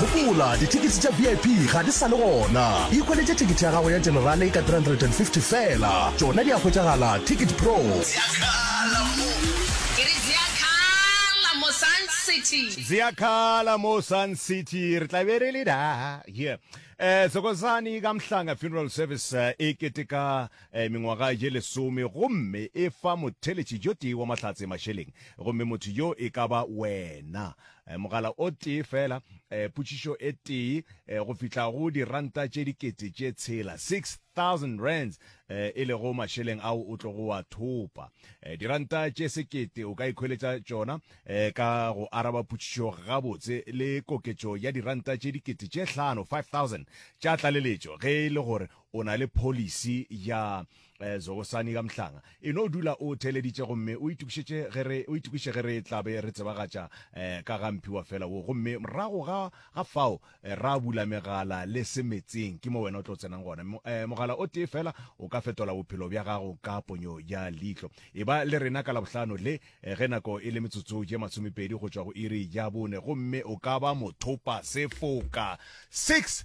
Gopola, dithekete tša VIP ga di sa le gona. Ikhweletše thekete ya gago ya Generale ka R350 feela. Tšona di a hwetšagala Ticket Pro. Ziakhala mo. Ke re ziakhala mo Sun City. Ziakhala mo Sun City. Re tla be re le da. Yeah. Eh, Thokozani ka Mhlanga Funeral Service eh, e keteka mengwaga ye lesome, gomme e fa motheletši yo tee wa mahlatse mašeleng, gomme motho yo e ka ba wena. Mogala o tee feela, potšišo e tee, go fihla go diranta tše dikete tše tshela, six thousand rands, e lego mašeleng ao o tlogo a thopa. Diranta tše sekete o ka ikhweletša tšona ka go araba potšišo gabotse, le koketšo ya diranta tše dikete tše hlano, five thousand, tša tlaleletšo ge e le gore O na le pholisi ya eh, zogosani ka mhlanga e no dula o theeleditše gomme o itokišetše ge re o itokiše ge re tla be re tsebagatša eh, ka ga mphiwa fela wo gomme morago ga ga fao eh, ra bula megala le se metseng ke mo wena o tlo tsenang gona Mo- eh, mogala o tee fela o ka fetola bophelo bja gago ka ponyo ya leihlo e ba le rena ka labohlano le eh, ge nako e le metsotso ye masomepedi go tšwa go iri ya bone gomme o ka ba mothopa sefoka 6